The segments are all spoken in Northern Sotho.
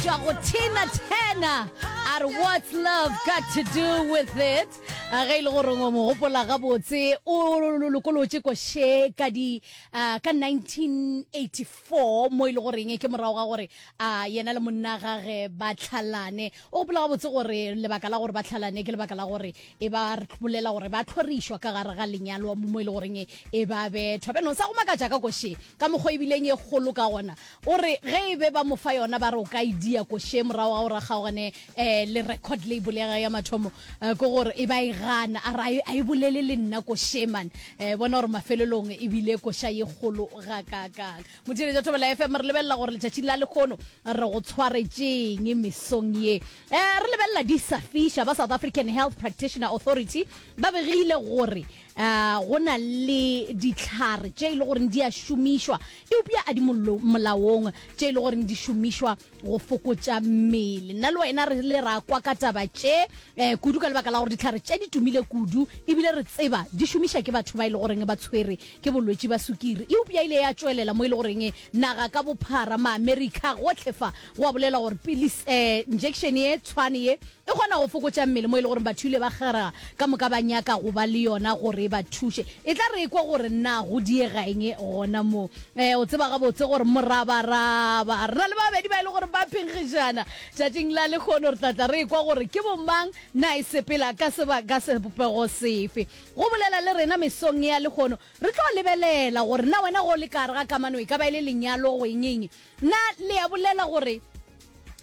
tšwa go Tina Turner a re what's love got to do with it a ge e le gore mo gopola gabotse o lokolotše ko she ka di ah, ka 1984 mo e le goreng ke morago ga gore a yena le monna gage ba tlhalane o gopola gabotse gore lebaka la gore ba tlhalane ke lebaka la gore e ba bolela gore ba tlhorišwa ka gare ga lenyalo mo e le goreng e ba bethwa beno sa go makatša ka ko she ka mokgwa ebileng e kgolo ka gona O re ge e be ba mo fa yona ba re o ka e dia ko še morago ga gore a kgaogane um le record label ya gage ya mathomo um ke gore e ba e gana a re a e bolele le nna ko še man um bona gore mafelelong e bile koša ye kgolo ga kaakang. Motšweletša Thobela FM re lebelela gore letšatšing la lekgono re go tshwaretšeeng mesong ye. Um re lebelela di sa fiša ba South African Health Practitioner Authority ba begile gore A go na le dihlare tše e le goreng di a šomišwa eupša a di mollo- molaong tše e le goreng di šomišwa go fokotša mmele? Nna le wena re ile ra kwa ka taba tše um kudu ka lebaka la gore dihlare tše di tumile kudu ebile re tseba di šomiša ke batho ba e le goreng ba tshwere ke bolwetši ba sukiri. Eupša ile ya tšwelela mo e le goreng naga ka bophara, ma-America, gohle fa go a bolelwa gore pilis, um injection ye tshwane ye E kgona go fokotša mmele mo e le gore batho ile ba kgera ka moka ba nyaka go ba le yona gore e ba thuše. E tla re ekwa gore na go diega eng gona moo. Ee, o tseba gabotse gore morabaraba. Re na le babedi ba e le gore ba phenkgišana. Tšatšing la lekgono re tla tla re ekwa gore ke bomang na e sepela ka seba ka sebopego sefe. Go bolela le rena mesong ya lekgono re tlo lebelela gore na wena ge o le ka gare ga kamano e ka ba e le lenyalo go eng eng. Na le a bolela gore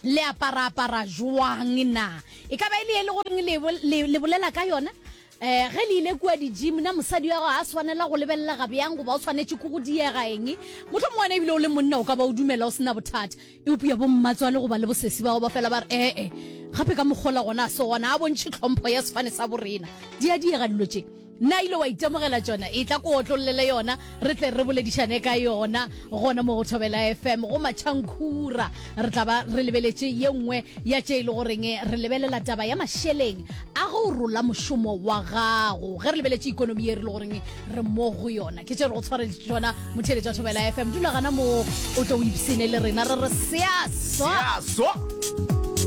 le aparaapara jwang? Na e ka ba e le e le goreng le, le, le bolela ka yona? eh ge le ile kua di-gym na mosadi wa gago a swanela go lebelela ga bjang goba o swanetše ke go diega eng motlho mongwana ebile o le monna o ka ba o dumela o sena bothata eupša bommatswale goba le bosesi ba go ba fela ba re ee eh, gape ka mokgola gona a se gona a bontšhe tlhompho ya sefane sa borena di a diega dilo tše Na ile wa itemogela tšona? Etla ko otlollele yona, re tle re boledišane ka yona gona mo go Thobela FM, go Matšhankhura. Re tla ba re lebeletše ye nngwe ya tše e le goreng re lebelela taba ya mašeleng a go rola mošomo wa gago, ge re lebeletše ekonomi ye re le goreng re mo go yona. Ke tše re go tshwareditše tšona, motheeletši wa Thobela FM. Dula gana moo, o tlo o ipshine le rena, re re seaso! Seaso!